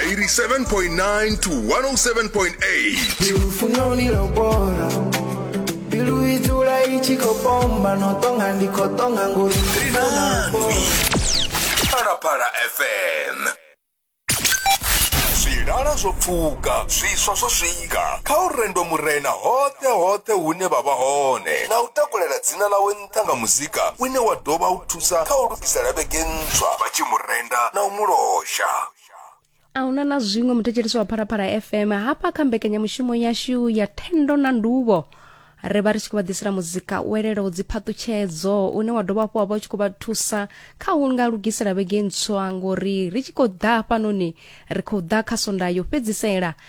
87.9 to 107.8 Parapara FM zwilala zwo pfuka zwiswa zwo swika kha u rendo murena hoṱhe hoṱhe hune vha vha hone na u takulela dzina ḽawe nṱha nga muzika une wa dovha u thusa kha u lugisa lavhege ntswa vha tshi mu renda na u mu losha a huna na zwiṅwe muthetshelisi wa phalaphala fm hafha kha mbekanyamushumo yashu ya thendo na nduvho ri vha ri tshi khou vha ḓisela muzika u elelaho dziphaṱutshedzo une wa dovha hafhu wa vha u tshi khou vha thusa kha u nga lugisela vhege ntswa ngori ri tshi khou ḓa hafhanoni ri khou ḓa kha sonda yo fhedzisela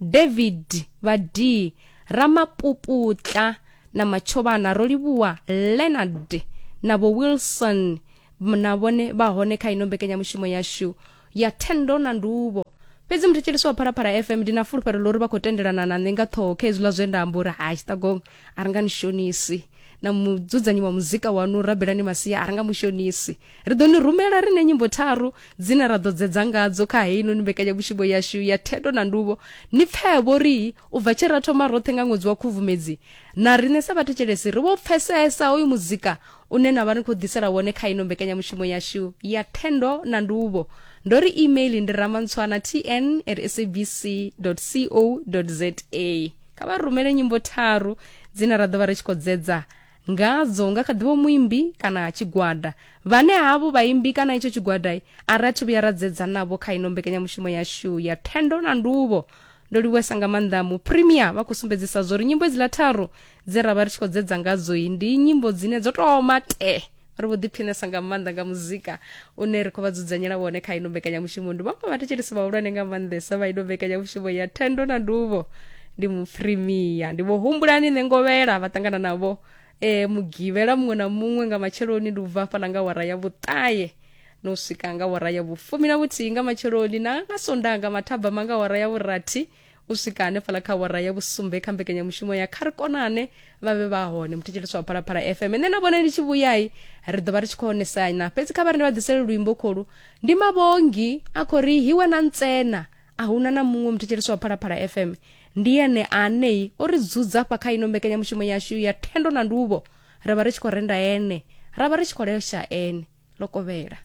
David Vhadii Ramapuputla na Matshobana ro livhuwa Leonard na vho Wilson na vhone vha hone kha ino mbekanyamushumo yashu ya thendo na nduvho fhedzi muthetshelesi wa phalaphala fm ndi na fulufhelo ḽo ri vha khou tendelana na nṋe nga ṱhoho kha hezwiḽa zwe nda amba uri ha tshiṱagong a ri nga ni shonisi na mudzudznyi wa muzika wanu rabelani masia a ri nga mushonisi Ri ḓo ni rumela ri na nyimbo tharu dzine ra ḓo dzedza ngadzo kha heinoni mbekanyamushumo yashu ya Thendo na Nduvho. Ni pfevho ri u bva tshe ra thoma roṱhe nga ṅwedzi wa Khubvumedzi, na riṋe sa vhathetshelesi ri vho pfesesa hoyu muzika une na vha ni khou ḓisela wone kha ino mbekanyamushumo yashu ya Thendo na Nduvho. Ndo ri email ndi ramantswana tn at sabc co za. Kha vha rumele nyimbo tharu dzine ra ḓo vha ri tshi khou dzedza ngadzo nga kha ḓivho muimbi kana tshigwada vhane havho vhaimbi kana itsho tshigwada a ri athu vhuya ra dzedza navho kha ino mbekanyamushumo yashu ya thendo na nduvho ndo livhuwesa nga maanḓa mu premier vha khou sumbedzisa zwo ri nyimbo idziḽa tharu dze ra vha ri tshi khou dzedza ngadzo ndi nyimbo dzine dzo toma te ri vho ḓiphinesa nga maanḓa nga muzika une ri khou vha dzudzanyela wone kha ino mbekanyamushumo ndi vhaṅwe vhathetshelesi vhahulwane nga maanḓesa vha ino mbekanyamushumo ya thendo na nduvho ndi mufrimiya ndi vho humbulani nṋe ngovhela vha ṱangana navho e mugivhela muṅwe na muṅwe nga matsheloni ndi u bva hafhaḽa nga wara ya vhuṱaye no swika nga wara ya vhufumi na vhuthihi nga matsheloni na nga sondaha nga mathabama nga wara ya vhurathi u swika hanefhala kha wara ya vhusumbe kha mbekanyamushumo ya kha ri konane vha vhe vha hone muthetshelesi wa phalaphala fm nṋe na vhone ndi tshi vhuyai ri ḓo vha ri tshi khou onesana fhedzi kha vha ri ndi vha ḓisele luimbo kholu ndi mavhongi a khou ri hiwe na ntsena a huna na muṅwe muthetshelesi wa phalaphala fm ndi ene anei o ri dzudza fha kha ino mbekanyamushumo yashu ya thendo na nduvho ra vha ri tshi khou renda ene ra vha ri tshi khou lesha ene lokovhela